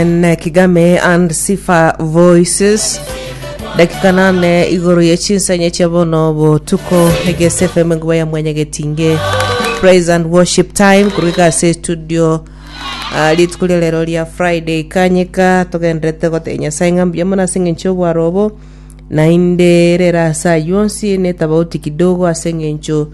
ne kigame and sifa voices dakika nane igoro ye chinsanye chia bono botuko egese fm nguba ya mwanya getinge praise and worship time kurika ase studio Ah, rituko ria rero ria friday kanyika togenderete gotee nyasaye ng'a mbuya mono ase eng'encho obwaro obo naende rera asa yonsi netabauti kidogo ase eng'encho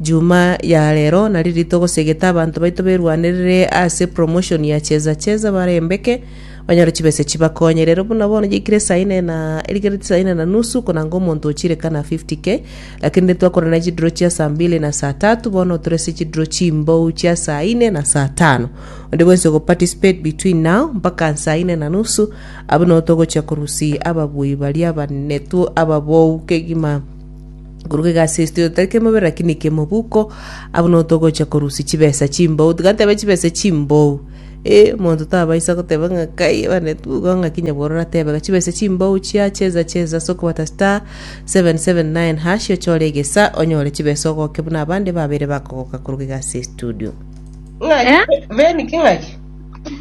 Juma ya rero nari rituko segete abanto baito berwanerere ase promotion ya cheza cheza barembeke banyore chibesa chibakonye rero buna bono yaikire saa ine na erigereti saa ine na nusu konanga omonto ochirekana 50k lakini rero twakorana na chiduro chia saa mbili na saa tatu bono tore ase chiduro chimbou chia saa ine na saa tano onde bwensi ogoparticipate between now mpaka saa ine na nusu abwo nabo togochia korusia ababui baria abanetu ababou kegima Korwa egasi esito tari kemobere lakini kemobuko abwo no togocha korusia chibesa chimbou tigatebe chibesa chimbou eh omonto tabaisa goteba ng'a kai bane tugo ng'a kinya bworora tebe ga chibesa chimbou chia cheza cheza ase okobata star 779 hash ochore egesa onyore chibesa ogoke buna abande babere bakogoka korwa egasi estudio Ng'aki? Eh? Beni ki ng'aki?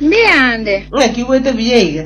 Mbiande. Ng'aki igwete buya iga?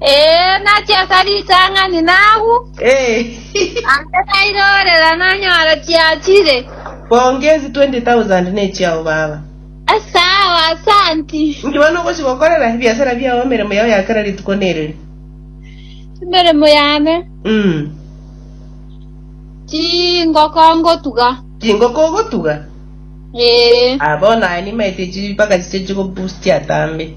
Ee, nachia ase ritang'ani nagwo, Eh, ande nairorera nanyora chiachire. bonge ezi 20,000 nechiao baba. Esawa, asanti. Inki bono ogochi gokorera ebiasara biao emeremo yao ya kera rituko nerere? Emeremo yane, Mm. chingoko ngotuga. Chingoko ogotuga? Ee, Ah, bono aye nimaete chi mpaka chiche chigobustia tambe.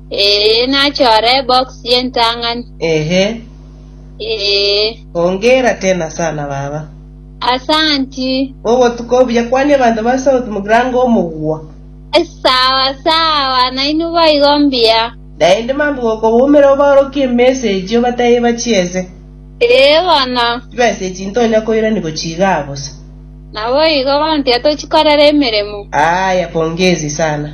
Ee, nachore ebox y'entang'ani. Ehe. Ee. Hongera tena sana baba. Asanti. Ogotuka obuya kwania abanto ba South Mugrango omogwa. Sawa sawa, nainwe boigo mbuya. Naende mambia gokobomera obaorokie emessage obatebie bachiese. Ee bono. Chimessage tintonya koirani gochia iga bosa. Naboigo, bono tiga tochikorera emeremo. Aaya, pongezi sana.